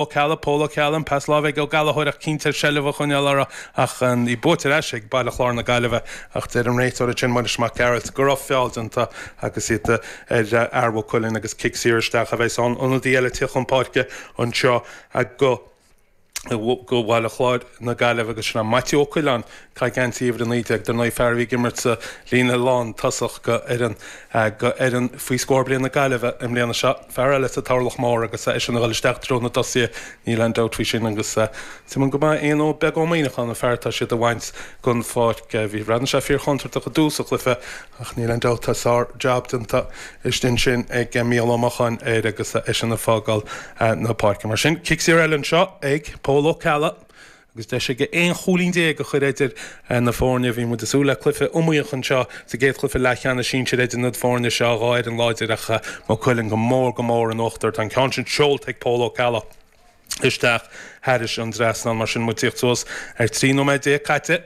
Ó Ceallaigh, Pól Ó Ceallaigh, an pas láimhe, Ó Gallchóir ach cinnte air seilbh a choinneáil uirthi ach í buaite ar ais ag Baile Chláir na Gaillimhe ach deir an réiteoir ansin, Muiris Mac Gearailt, go raibh feall déanta agus iad ar fhear Mhaigh Cuilinn agus cic saor isteach a bheas ann ionadaí eile ag tíocht chun páirce anseo go Baile Chláir na Gaillimhe agus sin é Maitiú Ó Coileáin. Caitheamh geansaí uimhir 19 dar ndóigh, fear a bhí ag imirt sa líne lántosach go fhoireann go fhoireann faoi scór bliain na Gaillimhe i mbliana. Seo fear eile sa toghlach mór agus eisean a dhul isteach i dtreo na dtosaithe, níl aon dabht faoi sin agus suimiúil go maith Éanna Beag Ó Muíneacháin an fear atá siad a bhaint den pháirc. Bhí bhreathnaigh sé fíor chontúirteach i dtús an chluiche ach níl aon dabht tá sár jab déanta istigh ansin ag Mícheál Ó Mocháin air agus eisean ag fágáil na páirce. Mar sin, cic saor eile anseo ag Pól Ó Ceallaigh. Agus deis aige aon chúilín déag a chur idir na foirne, bhí muid ag súil le cluiche iomaíoch anseo sa gcéad chluiche leathcheannais sinsir idir na foirne seo, dhá fhoireann láidir ach Maigh Cuilinn go mór go mór in uachtar. Tá an ceann sin seolta ag Pól Ó Ceallaigh isteach thairis an trasnán mar sin muid ag tíocht suas ar 13 nóiméad caite.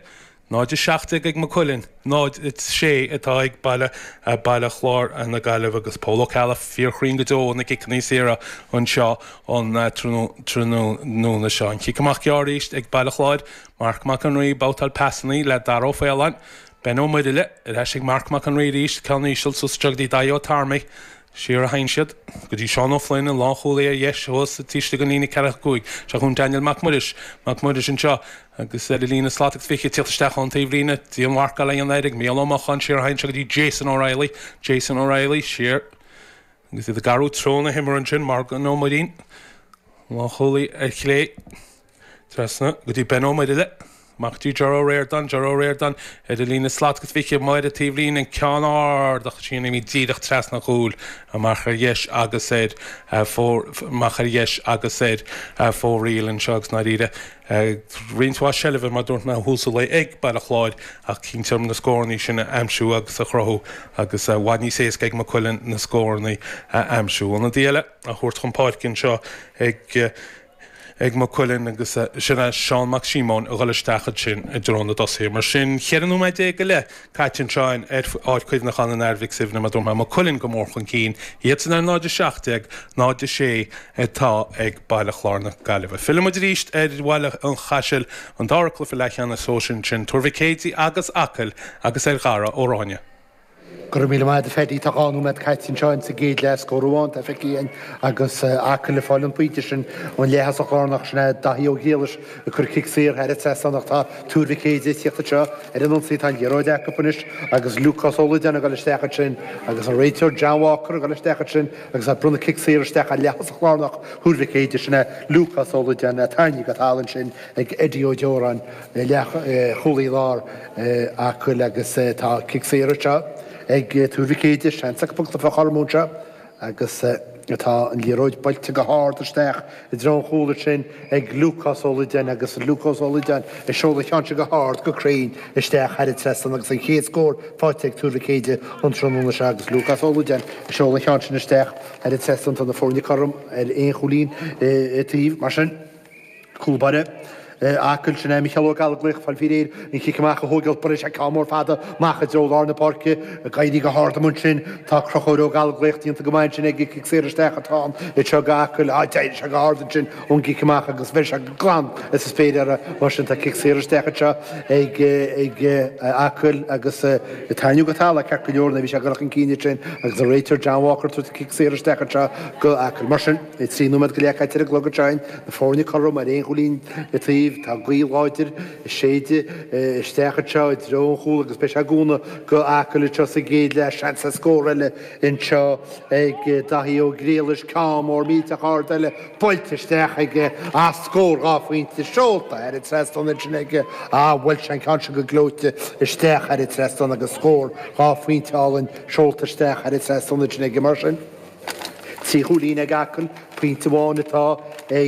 0, 17 ag Maigh Cuilinn, 0, 6 atá ag Baile Chláir na Gaillimhe agus Pól Ó Ceallaigh fíorchruinn go deo ó na ciceanna saora anseo an tráthnóna seo. An chic amach gearr arís ag Baile Chláir, Marc Mac an Rí, babhtáil pasanna le Dara Ó Faoláin, Ben Ó Muirthile, ar ais ag Marc Mac an Rí arís, ceann íseal suas go dtí Daithí Ó Tarmigh, Siar a théann siad, go dtí Seán Ó Floinn, an lánchúlaí ar dheis, thuas taobh istigh den líne ceathracha cúig, seo chugainn Daniel Mac Muiris, Mac Muiris anseo, agus ar an líne slat agus fiche ag tíocht isteach ón taobhlíne, dianmharcáil á dhéanamh air ag Mícheál Ó Mocháin, siar a théann sé go dtí Jason O'Reilly, Jason O'Reilly, siar, agus é ag athrú treo na himeartha ansin, Morgan Ó Muirín, lánchúlaí ar chlé. Trasna go dtí Ben Ó Muirthile, amach go dtí, Ger Ó Ríordáin, Ger Ó Ríordáin, ar an líne slat agus fiche ar an taobhlíne, an ceann ard sin imithe díreach trasna an chúil amach ar dheis agus ar fóraoil anseo agus i ndáiríre roinnt mhaith seilbhe, mar dúirt mé ó thús an lae ag Baile Chláir ach cinnte orthu na scórannaí sin a aimsiú agus a chruthú agus i bhfad níos éasca ag Maigh Cuilinn na scórannaí a aimsiú. Ionadaí eile á thabhairt chun páirce anseo ag. ag Maigh Cuilinn agus sin é Seán Mac Síomóin a dhul isteach ansin i dtreo na dtosaithe. Mar sin, 14 nóiméad go leith caite anseo ar Pháirc Chuimhneacháin an Athar Mhic Suibhne mar dúirt mé, Maigh Cuilinn go mór chun cinn, iadsan ar 0 17, 0 6 atá ag Baile Chláir na Gaillimhe. Fillfidh muid arís ar Bhaile an Chaisil an dara cluiche leathcheannais sóisir ansin, Tuar Mhic Éadaigh agus Acaill agus ar Dhara Ó Ráinne. Go raibh míle maith agat a Phaddy, tá dhá nóiméad caite anseo in sa gcéad leath, scór amháin atá feicthe againn agus Acaill ag fáil an pointe sin ón leaththosach lárnach sin é Daithí Ó Griallais ag cur cic saor thar an trasnán ach tá Tuar Mhic Éadaigh ag tíocht anseo ar an ionsaí, tá an liathróid acu anois agus Lúcás Ó Loideáin ag goil isteach ansin agus an réiteoir John Walker ag goil isteach ansin agus ag bronnadh cic saor isteach ar leaththosach lárnach Thuar Mhic Éadaigh, sin é Lúcás Ó Loideáin. Tarraingíodh go talamh ansin ag Eddie Ó Deoráin. leathchúlaí láir Acaill agus tá cic saor anseo ag Tuar Mhic Éadaigh, seans acu poc a chothromú anseo agus tá an liathróid buailte go hard isteach i dtreo an chúil ansin ag Lúcás Ó Loideáin agus Lúcás Ó Loideáin ag seoladh an cheann seo go hard go cruinn isteach thar an trasnán agus an chéad scór faighte ag Tuar Mhic Éadaigh an tráthnóna seo agus Lúcás Ó Loideáin ag seoladh an cheann sin isteach thar an trasnán tá na foirne cothrom ar aon chúilín an taobh mar sin. Cúl báire Acaill, sin é Micheál Ó Gallóglaigh, fáil faoi réir an cic amach a thóigeáil buaileann sé ceann mór fada amach i dtreo lár na páirce, ag éirí go hard amuigh ansin. Tá Crochúr Ó Gallóglaigh déanta go maith ansin aige, cic saor isteach atá ann anseo go Acaill. Á, d'éirigh sé go hard ansin ón gcic amach agus bheir sé go glan as an spéir air. Mar sin tá cic saor isteach anseo ag Acaill agus tarraingíodh go talamh é ceart go leor nuair a bhí sé ag goil chun cinn ansin agus an réiteoir John Walker tabhairt an cic saor isteach anseo go Acaill. Mar sin. Le trí nóiméad go leith caite ar an gclog ansin na foirne cothrom ar aon chúilín an taobh, tá gaoth láidir ag séideadh isteach anseo i dtreo an chúil agus beidh sé ag cúnamh go hAcaill anseo sa gcéad leath. Seans ar scór eile anseo ag Daithí Ó Griallais, ceann mór millteach ard eile buailte isteach aige ach scór dhá phointe seolta thar an trasnán ansin aige. Á, bhuail sé an ceann sin go gleoite isteach thar an trasnán agus scór dhá phointe álainn seolta isteach thar an trasnán ansin aige mar sin. Trí chúilín ag Acaill, pointe amháin atá ag.